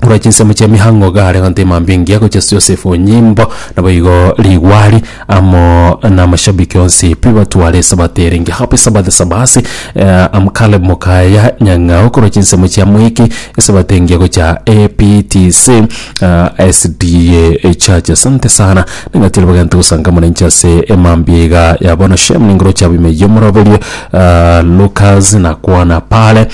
korwa chinsemo chia mihango iga are gontema mbe engiya gochia ase Yosefu nyimbo, naboigo rigwari amo namashabiki onsi pi batware esabato ere engiya. Happy Sabbath Sabasi eh, am Caleb Mukaya Nyang'ao korwa chinsemo chia Mwiki esabato engiya gochia APTC eh, SDA Church. Asante sana ning'ati ribaga gento gosangamwa nainche ase emambia iga ya bono. Shem ningoroche abwo ime yomoroberio eh, Lucas nakwana pale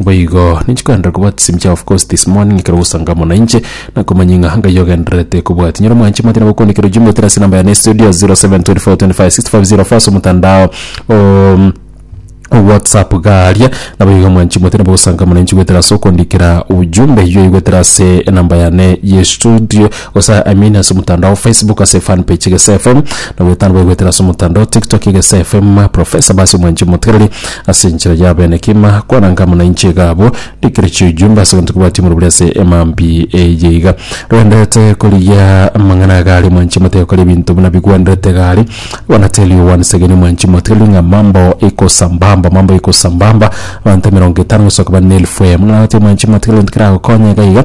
Boigo ninche koenderera kobwata chisemi chia of course this morning ekero ogosanga amo nainche nakomanya ng'a Ngai ogendererete kobwati. Nyora omwanche mati nabo okondikera ojumbe goteera ase enamba yane ya estudio 0724256504 ase omotandao o whatsapp igaa aria. Naboigo omwanchi moti nabo ogosanga amo nainche goetera ase okondikera ujumbe eywo oigwetera ase enamba yane ya estudio Gosa amini ase omotandao o Facebook ase fan page Egesa FM, na goetana baigwetera ase omotandao o TikTok Egesa FM. Profesa Abasi omwanche omotigereri ase enchera ya abenekima, kwana anga amo nainche iga abwo, ndikire chiujumbe ase egento kebwati omorero bore ase emambi eye iga. Rwendete korigia amang'ana iga aria omwanchi omoteke gokora ebinto buna bigwenerete iga aria. I wanna tell you once again omwanchi omotigereri ng'a mambo iko sambamba, mambo iko sambamba. Abanto emerongo etano gosoka bane na elfu eye. Muna nabatebi omwanchi omotigereri gento keragokonye iga iga,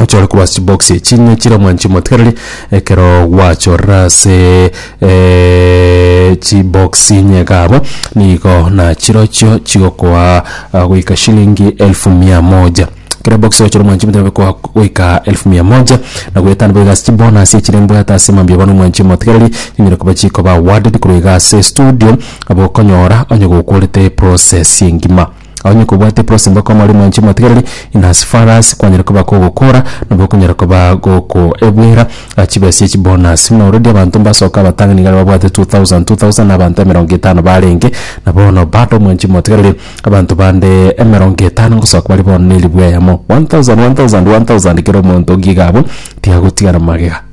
ochore korwa ase chibox echi ng'a chire omwancho omotigareri ekero gwachorire ase eh, chibox nyega abo nigo nachirochio chigokoa ah, goika shilingi elfu mia moja kera box ochora omwancho omotigareri gokoa goika elfu mia moja na goetana boiga ase chibonus echire mbwate ase mambia bono omwancho omotigareri chinyare koba chikoba awarded korwa iga ase studio abwo okonyora onye gokworete process engima Onye kobwate eprosi mbaka omori mwanche motigereri in as far as kwanyare koba kogokora nabo okonyara koba gokoebwera chibesa echi bonus buna already abanto mbasoka abatang'ani niga babwate 2000 2000 na abanto emerongo etano barenge na bono bado mwanchi motigereri abanto bande emerongo etano ngosoka bari bono ne ribu eyemo 1000 1000 1000 kera omonto ngiga abwo tiagotigara magega.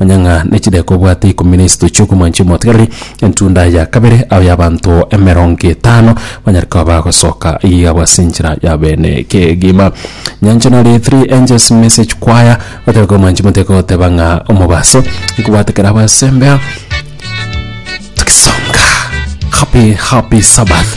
Manya ng'a ne chidaeka obwate ikomi na isato chi'okomwancha emotigareri, entunda ya kabere ao y'abanto emerongo etano banyare koba bagosoka iga yabo ase enchera ya beene kegima. Nyancha nare Three Angels Message Choir batebe komwancha emoteka goteba ng'a omobaso nkobwate kera abasembea tugisonga. Happy happy Sabbath.